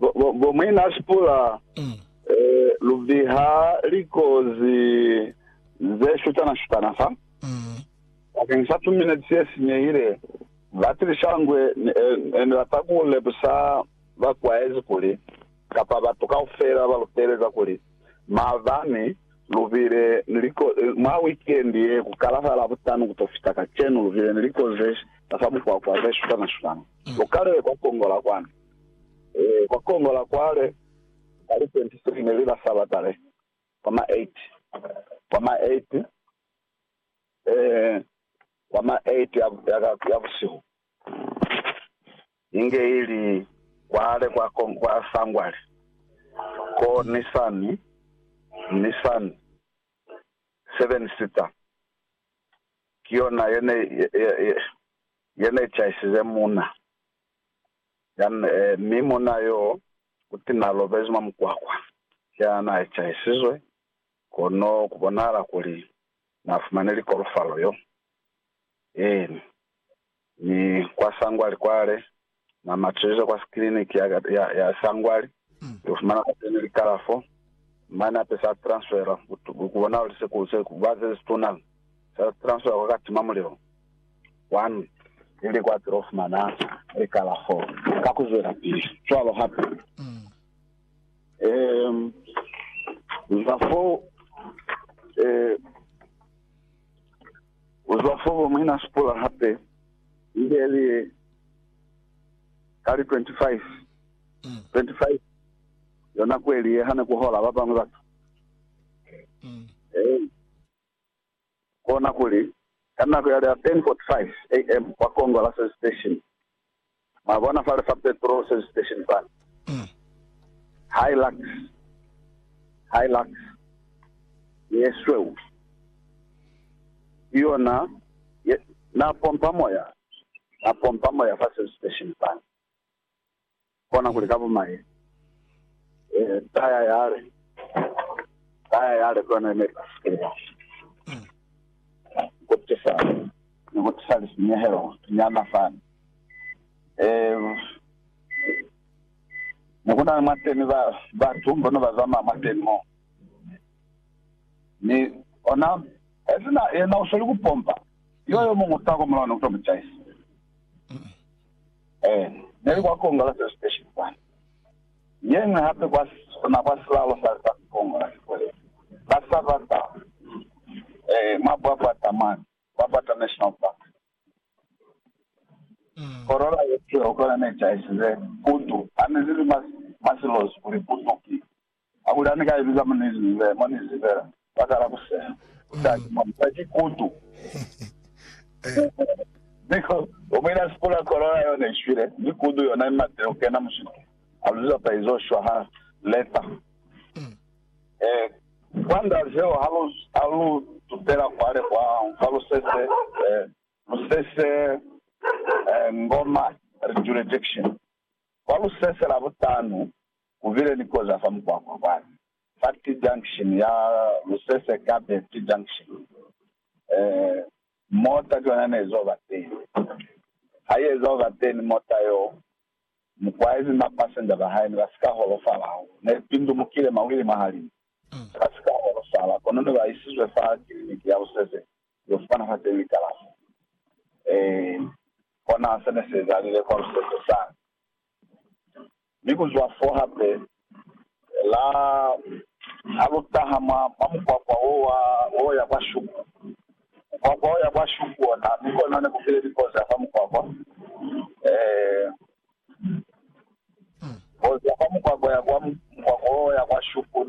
Bomwina Sipula, lu biha likozi ze shutana-shutana fa. Bakeng sa tumineti ye sinyehile, batilishangwe ne bata ku lemusa bakwaezi kuli, kapa batu kaufela ba lu teeleza kuli, maabani lu bile ni likozi, mwa wikendi ye ku kala fa Labutanu ku to fita kacenu lu bile ni likozi ze fa mukwakwa ze shutana-shutana. Lu kalile kwa Kongo la kwanu. Kwa kono la kwale ka li 23 ne li la Sabata le, kwa ma 8, kwa ma 8, eeh, kwa ma 8 ya, ya, ka, ya busihu, inge ili kwale kwa, kwa, kwa sangwali, ko Nisan, Nisan, seven sita, ki yona yene, ye, ye, ye, yene ichaisize muna. Jan, mi munna yo uti na lobezi mwa mukwakwa ya na ecahisizwe, kono ku bonahala kuli na fumane likolofalo yo. Eeni. Mi kwa sangwali kwale, na matuzize kwa kiliniki ya, ya, ya sangwali, Lu fumana pateni li kalafo, mane hape sa transfera ku bona li se ku se ba ze situna, sa transfera kwa ka tima mulilo. Kwani, ili kwa tilo fumana li kalafo ka ku zwela pili. Cwalo hape, um, uzwa fo, eh, uzwa fo bo muina Sipula hape, ili ye li ye ka li 25. 25 yona kweli ye hane kuhola babañwi batu Ee, kona kuli, ka nako yale ya 10:45 AM kwa kongo la service station, mwabona fale fa petrol service station fani, Hilux, Hilux ye sweu, ki yona ye, na pompa moya, na pompa moya fa service station fani. kona kuli ka bumai ta ya yale, ta ya yale ku yona ne ka sukela ku tisa, ni ku tisa lisinyehelo nyana fani. Ne ku na ni mwateni ba, batu bo ne ba zamaya mwateni mo, mi ona esina yena u sweli ku pompa, yo yo muñwi u taha kwa mulao ni ku to mu caisa. Ee, neli kwa Congress Station kwani. Yeñwi hape kwa sona kwa silalo sa litsatsi Congress kwele, ka Sabata, ee, mwa Bwabwata mane, Bwabwata National Park. Korola ye tee ukona ne caisize putu, hane nili mwa, mwa silozi kuli putu ki Ha kuli hane ka eziza mwa New Zealand, mwa New Zealand ba kala ku seha musali mwa musali kutu because omuina ya sipula corona yona ishwile mi kutu yona imatile kukena mushiku a luziza pa izo shwa ha leta eh kwa nda zeo ha lu ha lu tutela kwale kwa kwa lusese eh lusese eh ngoma rejurejection kwa lusese la butanu Ku bile ni koza fa mukwakwa kwani fa T-junction ya Lusese Kape T-junction. Mota ki yona ne izo ba teni. Ha i eza ku ba teni mota yo, mukwaezi ni ba passenger ba hae ne ba si ka holofala hahulu. Ne li pindumukile mawili mwa halimu. Ne ba si ka holofala, kono ne ba isizwe fa kiliniki ya Lusese ku yo fumana fa teñi kalafo. Ee, kona se ne si ezalile kwa Lusese sani. Mi kuzwa fo hape, la ha lu taha mwa, mwa mukwakwa wo wa, wo ya kwa Shuku. Mukwakwa wo ya kwa Shuku ona, mi kona ne ku bile likozi ya fa mukwakwa. Ee. Kozi ya fa mukwakwa ya kwa, mukwakwa wo ya kwa Shuku ne,